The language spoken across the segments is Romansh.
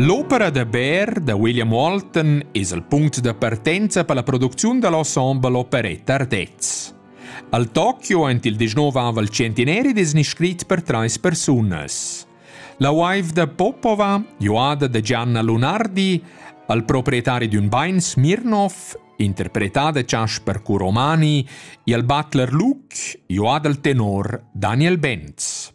L'opera da Baer da William Walton es il punct da partenza per la producziun da l'ensemble operetta Ardez. Al Tokyo ant il 19 ava il centineri des iscrit per trais persunas. La wife da Popova, joada da Gianna Lunardi, al proprietari d'un bain Smirnov, interpretada da Jasper Kuromani, e al butler Luke, joada al tenor Daniel Benz.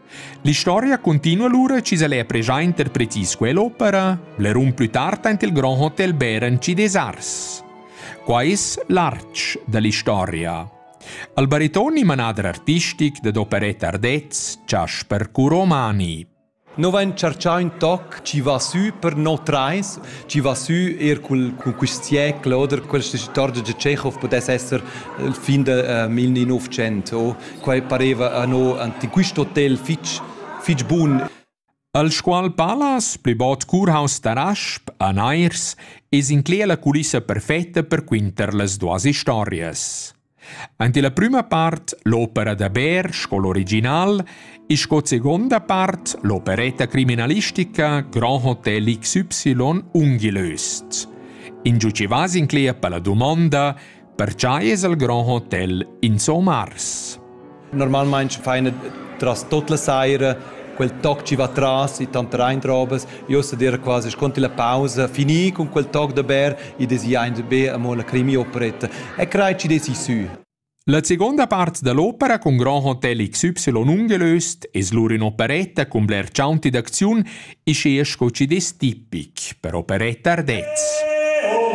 L'historia continua lura chi s'el ha pregià interpretis quell'opera, blerun plü tard aint il Grand Hotel Beren ci des Arts. Qua es l'arch da l'istoria. Al baritoni manader artistic dad operetta Ardez, Chasper Curomani. No vain chargià ün toc chi va sü per no trais, chi va sü eir cul, cun quist siecl oder questa storia da Tschechov pudess esser il fin de, ähm, il 1900 o Quai pareva anno ante quist hotel fich fich bun. Al Scuol Palas, pli bod curhaus da Rasp a Nairs, es inclea la culissa perfetta per quinter las duas historias. Ante la prima part l'opera da Bär, sco l'original, e sco seconda part l'operetta criminalistica Grand Hotel XY ungilöst. In giucivas inclea per la dumonda Pertgei es il grand hotel insomma ars? Normalmein faina tras tut la saira quel toc ci va tras i tant rein robes io sa dir quasi sconti la pausa fini con quel toc da ber i desi ein be amo la crimi operetta e crai ci desi su La seconda part dell'opera con Grand Hotel XY ungelöst es lur in operetta con bler ciaunti d'acziun e sce sco ci des tipic per operetta ardez.